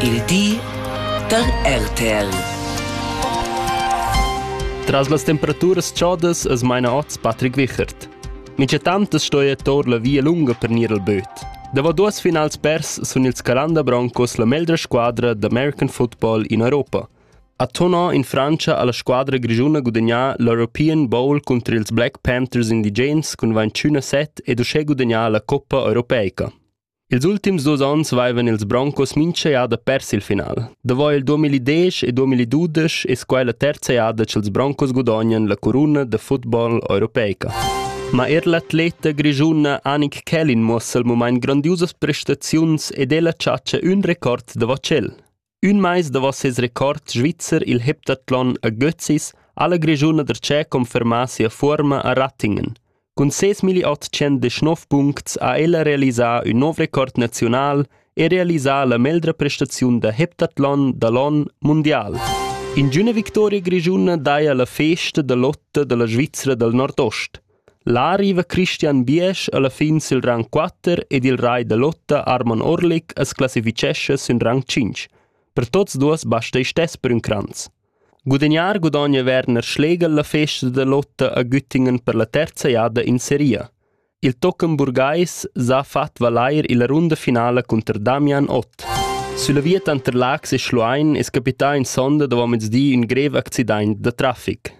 Il di da RTL. Tras las temperaturas chodas es maina oz Patrick Wichert. Minchatant es stoja tor la via lunga per gnir al böt. Davo duos finals pers sun ils Calanda Broncos la meglra squadra d'American football in Europa. A Tonò in Francia ha la squadra grischuna gudagnà l'European Bowl cunter ils Black Panthers indigens cun 21 set ed uschè gudagnà la Coppa europeica. Ils ultims dus onns vaivan ils Broncos mincha jada pers il final. Davo il 2010 e 2012 es quai la terza jada cha'ls Broncos gudognan la curuna da futbol europeica. Ma eir l'atleta grischuna Anik Kellin muossa il mumaint grandiusas prestaziuns ed el ha chatschà ün record davo tschel. Ün mais davo ses record svizzer il heptathlon a Götzis ha la Grischuna da Tschè confermà sia fuorma a Rattingen. Cun ses 1819 puncts ha ella realisà ün nouv record naziunal e realisà la meglra prestaziun da heptathlon da l'on mundial. Ingüna victoria grischuna daja la festa da lotta da la Svizra dal nordost. Là riva Christian Biesch alla fin sil rang quatter ed il rai da lotta Arman Orlik as classifichescha sün rang tschinch. Per tuots duos basta isch stess per ün cranz. Gudagnar gudogna Werner Schlegel la festa da lotta a Güttingen per la terza jada in seria. Il tochen burgais s'ha fat valair illa runda finala cunter Damian Ott. Sulla via tanter Lax e Schluein es capità in sonda davo mezdi ün grev accidaint da trafic.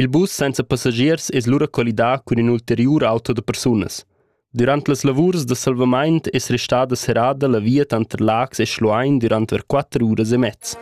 Il bus senza passagiers es lura collidà cun ün ulteriur auto da persunas. Dürant las lavurs da salvamaint es restada serrada la via tanter Laax e Schluein dürant ver quatter uras e mez.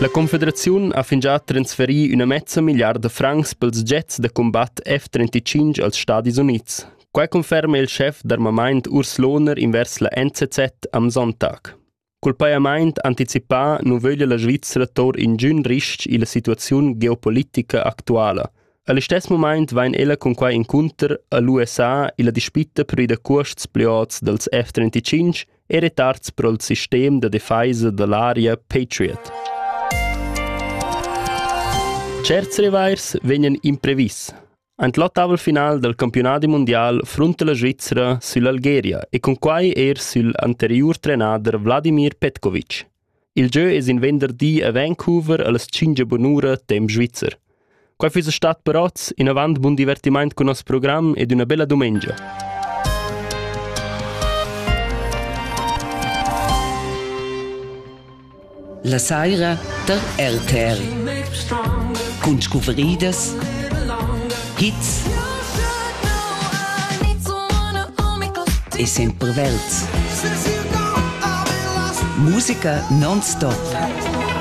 La Confederaziun ha fingià transferì üna mezza milliarda francs pels jets da combatt F-35 als Stadis Units. Quai conferma il schef d'armamaint Urs Lohner invers la NZZ am Sonntag. Cul pajamaint anticipà nu vöglia la Svizra tour ingün ris-ch illa situaziun geopolitica actuala. A listess mumaint vain ella cun quai incunter a l'USA illa dispitta per ir da cuosts plü ots dals F-35 e retards pro'l sistem da defaisa da l'aria Patriot. Tscherts revairs vegnan imprevis. Ein l'ottaval final dal campiunadi mundial frunta la Svizra süll'Algeria e cunquai er sül anteriur trenader Vladimir Petkovic. Il gieu es in venderdi a Vancouver allas tschingia bunura temp svizzer. Quai füss stat per oz in avant bun divertimaint cun nos program ed üna bella dumengia. La saira tar RTR cun scuvridas, hits e semperverds. Musica non-stop.